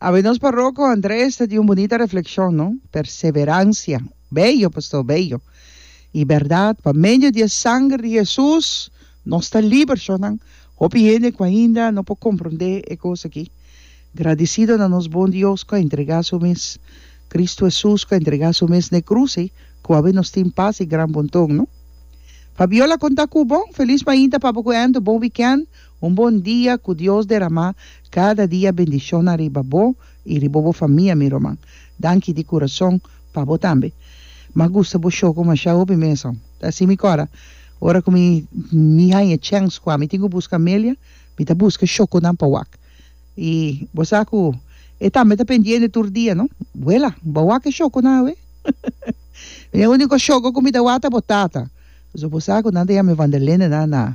Awe nos parroco Andres ta di un bunita reflexion, no? Perseverancia. Bello, pastor, bello. I berdad, pa medio di e sanger di Jesus nos ta liber shornan. Hopi hende cu ainda no por comprende e cos aki. Gradicido na nos bon Dios cu a entrega su mes, Cristo Jesus cu a entrega su mes n'e cruz ei, cu awe nos tin pas i gran bonton, no? Fabiola conta cu bo. Feliz mainta papa cu Anto, bon weekend. Un bon dia ku Dios deramá kada dia bendishonnan riba bo i riba bo famia mi ruman. Danki di kurason pa bo tambe. M'a gusta bo show ku mashá hopi mesa. Ta si mi kora. Ora ku mi mi haña chèns kua mi tin ku buska Amelia, mi ta buska shokonan pa wak. I bo sa ku e tambe ta pendiente tur dia, no? Wela, b'a wak e shokonan awe? E úniko shoko ku mi ta wak ta bo tata. So bo sa ku nan ta yama e Vanderlindenan na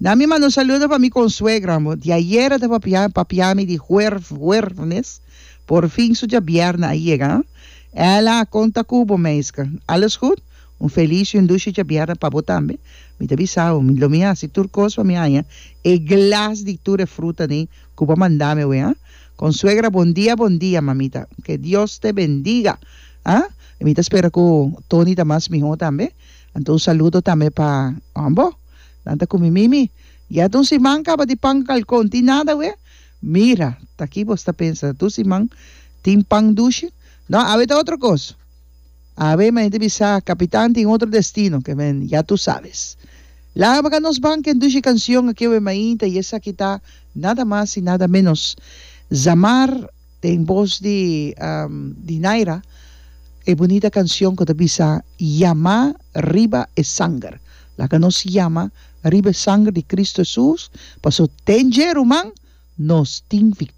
Na mi manda un saludo pa mi konsuegra amor. Di ayera ta papia papia mi di huerf huerfnes, por fin su djabièrnè a yega. Ella a konta ku bo meiske. Alles goed? Un feliz y un dushe djabièrnè pa bo tambe. Mi ta bisa bo, lo mi hasi tur kos pa mi haña e glas di tur e fruta nei ku bo a manda mi awe, ha? Konsuegra bon dia bon dia mamita. Ke Dios te bendiga, ha? Mi ta spera ku Tony ta mas mihó tambe. Anto un saludo tambe pa Ombo. Nan ta cu mi Mimi, Ya dun siman caba di pan cu calcon, tin nada we? Mira, taki bo sta pensa, dun siman tin pan dushi? No, awe ta otro cos. Awe mi a hende bisa, Capitan tin otro destino, que men ya tu sabes. Laga baga nos ban ken dushi cancion aki awe mainta y esaki ta nada mas y nada menos Zamar. Den bos di Dinaira e bunita kancion ku ta bisa Yamá riba e sanger. Laga nos yama riba e sanger di Kristu Hesus, paso den dje ruman nos tin.